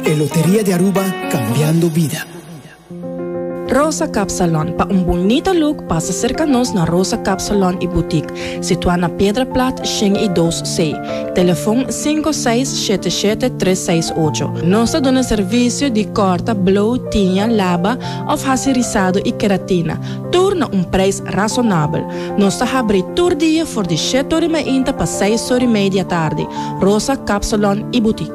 E Loteria di Aruba, Cambiando Vida. Rosa Cap Salon, pa un bunita look pasa serka nos na Rosa Cap Salon y Boutique, situá na Piedra Plat shen y dos C, telefon sinku seis shete shete tres seis ocho. Nos ta duna servisio di kòrta, blow, tiña, laba òf hasi risado y keratina, tur na un preis rasonabel. Nos ta habri tur dia for di shèt ori mainta pa seis ori mei di atardi. Rosa Cap Salon y Boutique.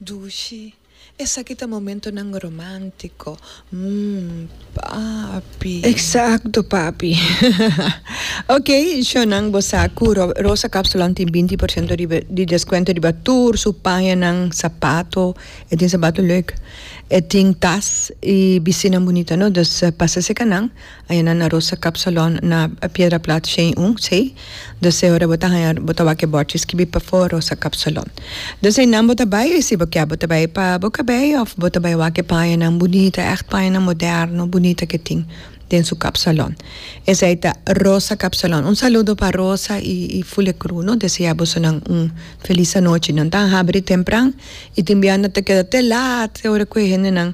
Dushi, Esaki ta momentonan romántico, mm, papi. Exacto, papi. Ok, shownan, bo sa cu Rosa Kapsalon tin binti por ciento di descuento riba tur su pañanan, sapato, e tin sapato leuk, e tin tas y bisinan bunita, no? Dus pasa secanan, Ayana na Rosa Cup Salon na Piedra Plat Shane un, Sei, Deseo ora bo ta haña bo ta wak e bòrchi skibi Pafor Rosa Cup Salon. Des einan bo ta bai si bo kia bo ta bai pa bo kabei òf bo ta bai wak e pañanan bunita ègt pañanan moderno bunita ke tin den su kap salon. Esei ta Rosa Cup Salon. Un saludo pa Rosa i i ful e kru no desea boso nan un felis anochi. Nan ta habri tempran i tin biaha nan ta keda te lat ora ku e hendenan.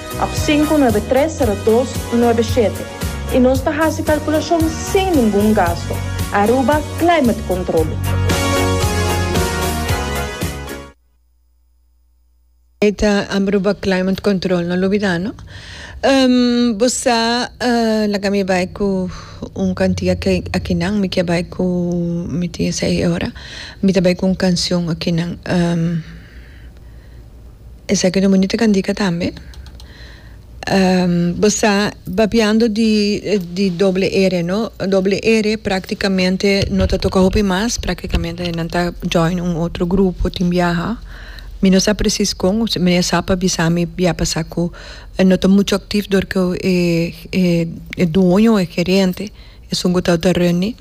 Ap sinku nuebe tres sero dos nuebe shete i nos ta hasi kalkulashon sin ningun gasto. Aruba Climate Control. Ei ta Aruba Climate Control, no lo bida no. Ehm, bo sa, laga mi bai ku un kantia akinan, mi ke bai ku, mi tin esei e ora, mi ta bai ku un kanshon akinan. Esaki ta bonito cantica tambe. Bo sa babiando di di doble r no doble r practicamente no ta toca hopi mas practicamente nan ta join un otro grupo tin biaha mi no sa precies con mi a sa pa bisa mi bia pasa cu no ta mucho activo dor cu e e dueño o e gerente esun cu ta ta reuní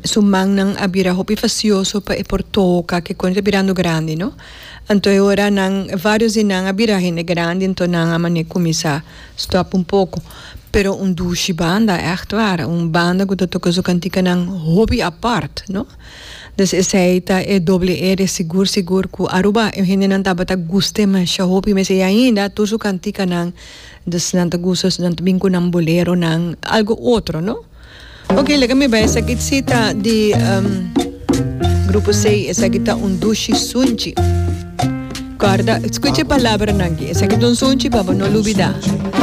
Su mannan a bira hopi fasioso pa e por toca ke kende ta birando grandi no. Anto e ora nan varios di nan a bira hende grandi anto nan a mane cuminsa stop un poco. Pero un dushi banda echt war un banda cu ta toca su canticanan hopi apart no. Des esey ta e doble e de sigur sigur cu Aruba e hendenan tabata guste masha hopi mes e ainda tur su canticanan des nan ta gusta nan ta bin cu nan boleronan algo otro no. Ok leka mi bai esaki cita di grupo seis esaki ta un dushi sunchi guarda scucha e palabranan aki esaki ta un sunchi pa bo no lubida.